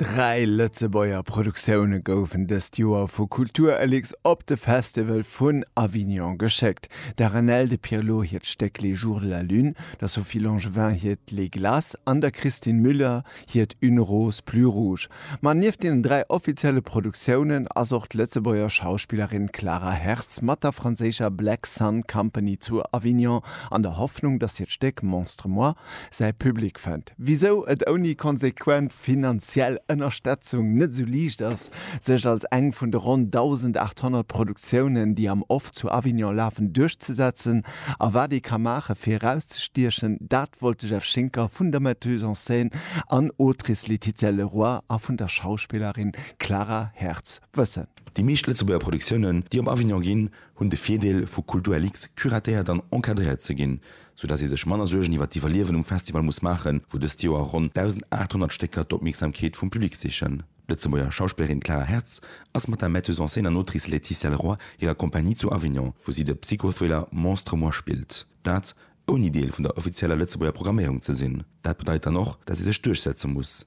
Dräi Lëtzebuerger Produktioune goufen dëst Joer vu Kultur Elix op de Festival vun Avignon geschéckt, der Renelle de Pirlo hiert Stéck Les jours de la lune, der Sophie Langevin hiert Les glaces an der Christine Müller hiert Une rose plus rouge. Ma nieft deenen dräi offizielle Produktiounen ass och d'Lëtzebuerger Schauspillerin Clara Hertz mat der franséischer Black Sun Company zu Avignon an der Hoffnung, datt hiert Stéck Monstre-moi säi Public fënnt, wisou et ouni konsequent finanziell Ënnerstetzung net esou liicht ass, sech als eng vun de ronn 1.800 Produktiounen, déi am Off zu Avignon lafen, duerchzesetzen a wat ee ka maache fir erauszestiechen, dat wollt de Jeff Schinker vun der Metteuse en scène an Autrice Laetitia Leroy a vun der Schauspillerin Clara Hertz wëssen. Déi meescht Lëtzebuerger Produktiounen, déi op Avignon ginn, hunn de Virdeel, vu Kultur Lix curatéiert an encadréiert ze ginn, sou dass ee sech manner Suergen iwwert d'Iwwerliewen um Festival muss maachen, wou dëst Joer ronn 1.800 Stécker d'Opmierksamkeet vum Public sichen. D'Lëtzebuerger Schauspillerin Clara Hertz ass mat der Metteuse en scène an Autrice Laetitia Leroy hirer Kompanie zu Avignon, wou si de Psycho-Thriller Monstre moi spillt. Dat, ouni Deel vun der offizieller Lëtzebuerger Programméierung ze sinn. Dat bedeit dann och, dass ee sech duerchsetze muss.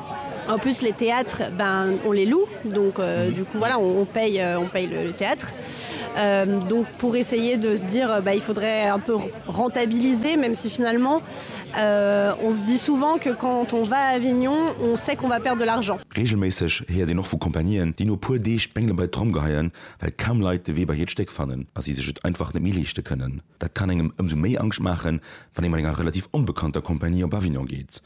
En plus les théâtres ben on les loue donc du coup voilà on paye on paye le théâtre euh, donc pour essayer de se dire ben il faudrait un peu rentabiliser même si finalement euh, on se dit souvent que quand on va à Avignon on sait qu'on va perdre de l'argent. Reegelméisseg héiert een och vu Compagnieen, déi no puer Deeg d'Bengele bei d'Tromm geheien, well kaum Leit de Wee bei hiert Stéck fannen a si sech et einfach net méi leeschte kënnen. Dat kann engem ëmsou méi Angscht maachen, wann ee mat enger relativ onbekannter Compagnie op Avignon geet.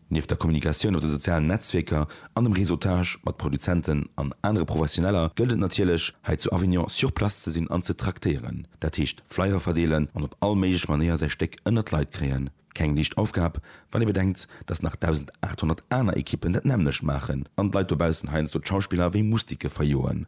Nieft der Kommunikatioun op de sozialen Netzwierker an dem Réseautage mat Produzenten an anere Professioneller gëllt et natierlech, hei zu Avignon sur place ze sinn an ze traktéieren. Dat heescht Flyer verdeelen an op all méiglech Manéier säi Stéck ënnert d'Leit kréien. Keng liicht Aufgab, wann ee bedenkt, datt nach 1.800 aner Ekippen dat nämmlecht maachen an d'Leit dobaussen heiansdo d'Schauspiller wéi Mustike verjoen.